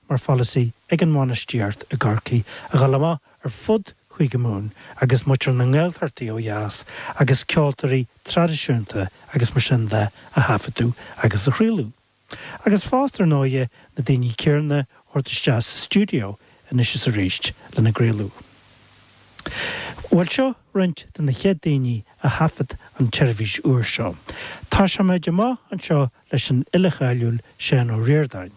mar pholasaí ag an mbainistíocht i gCorcaigh a dhul amach ar fud Chúige Mumhan agus muintir na nGaeltachtaí ó dheas agus ceoltóirí traidisiúnta agus mar sin de a thaifeadadh agus a chraoladh. Agus fosta, ar ndóighe, na daoine céanna a thabhairt isteach sa stiúideo anois is arís lena gcraoladh. Bhuel, seo roinnt de na chéad daoine a thaifead an tseirbhís úr seo. Tosaímid amach anseo leis an fhile cháiliúil Seán Ó Ríordáin.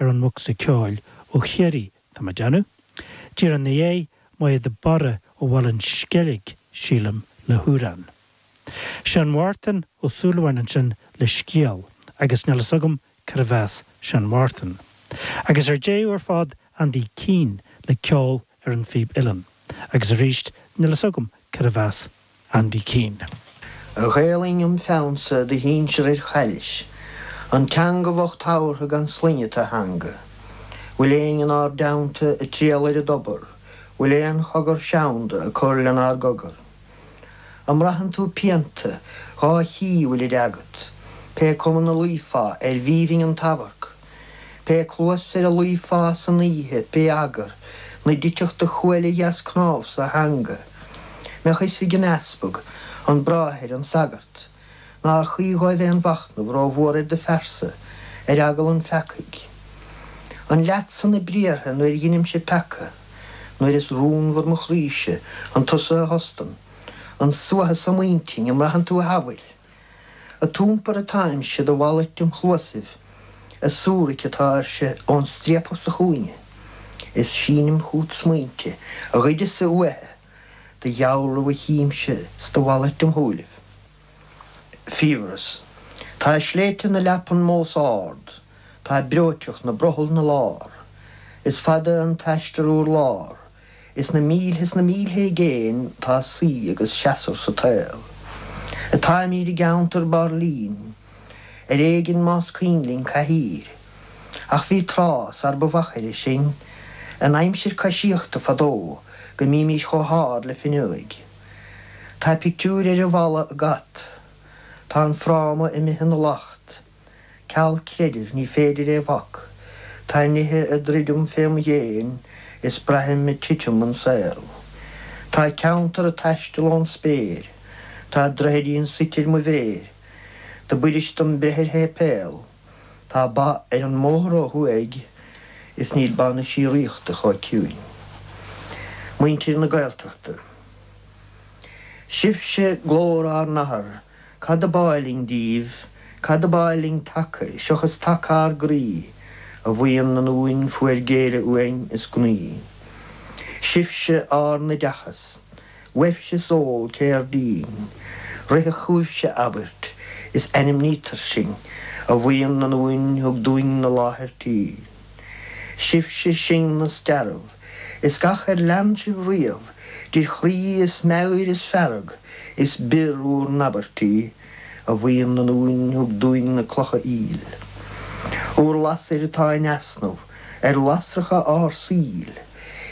ar an mbocsa ceoil ó Chiarraí, tá mé ag déanamh. Díreach ina dhéidh Máire de Barra ó Bhaile an Sceilg, sílim, le hamhrán. Seán Mhártain Ó Súilleabháin ansin le scéal, agus níl fhios agam cárb as Seán Mhártain. Agus ar deireadh ar fad Andy Keane le ceol ar an phíb uilleann, agus arís níl fhios agam cárb as Andy Keane. A Ghaelainn im pheannsa do shinsear ar chaillis, An teanga bhocht thabhartha gan sloinne tú a theanga, Bhfuil éinne inár dteannta ag triall ar an dtobar, Bhfuil aon chogar seanda ag cur lenár gcogar? An mbraitheann tú pianta, dhá chích bhfuilid agat, Pé cuma 'na luífeá arbh aoibhinn an t-amharc? Pé cluas ar a luífeá san oíche, pé eagar 'na dtitfeadh do chuaille dheas cnámh sa theanga, mbeadh fhios ag an easpag, an bráthair, an sagart, nár chuí dhóibh aon mhachnamh ró-mhór ar do phearsa, ar eagal an pheacaigh. An leatsa na briathra nuair dheinimse peaca, nuair is rúnmhar mo chroíse, an tusa a thostann an suathadh so im intinn, an mbraitheann tú a shamhail? Ad iompar atáimse do mhalairt im chluasaibh, ag súraic atáirse ón striapach sa chúinne, is sínim chút smaointe a ghoideas-sa uaithe do dhealramh a chímse 's do mhalairt im shúilibh. Fiabhras. Tá sléibhte na leapan mós ard, tá breoiteacht 'na brothall 'na lár, is fada an t-aistear urlár, Is na mílte is na mílte i gcéin tá suí agus seasamh sa tsaol. Atáimid i gceantar bairlín, ar éigean más cuimhin linn cathaoir. Ach bhí tráth sar ba mhachaire sinn, in aimsir coisíochta fadó, go mbímis chomh hard le fuinneoig. Tá pictiúir ar an bhfalla ag at. Tá an fráma imithe 'na lacht. Ceal creidimh ní féidir é bhac, tá nithe ag druidim fém dhéin is braithim ag titim an saol. Tá ceantar ag taisteal ón spéir, tá droichidín suite ar mo mhéir, do b'fhuirist dom breith ar shéipéal, tá ba ar an mbóthar ó thuaidh is níl ba na síoraíochta chomh ciúin. Muintir na Gaeltachta. Sibhse glór ár n-athar. Cad ab áil linn díbh? Cad ab áil linn taca, seachas taca ár gcroí, a bhuíon ionúin fuair géilleadh uainn is gnaoi? Sibhse ár n-oideachas, uaibhse is eol cér dínn, rithfeadh chugaibhse abairt, is ainmnítear sinn, a bhuíon ionúin thug dúinne láthair tí. Sibhse sinn is dearbh is gach ar lean sibh riamh idir chroí is meabhair is fearg is bior bhur n-abairtí, a bhuíon ionúin thug dúinn na clocha aoil. Bhur lasair atá in easnamh ar lasracha ár saoil,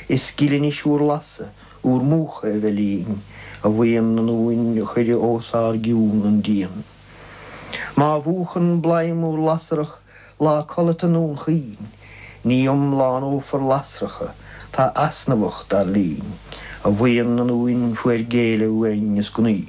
is gile anois bhur lasadh, bhur múchadh a bheith linn, a bhuíon ionúin a chuir os ár gcionn an díon. Má mhúchann bladhm bhur lasrach, Lá codlata i nDún Chaoin, Ní iomlánófar lasracha, tá easnamhach, dar linn, a bhuíon ionúin fuair géilleadh uainn is gnaoi.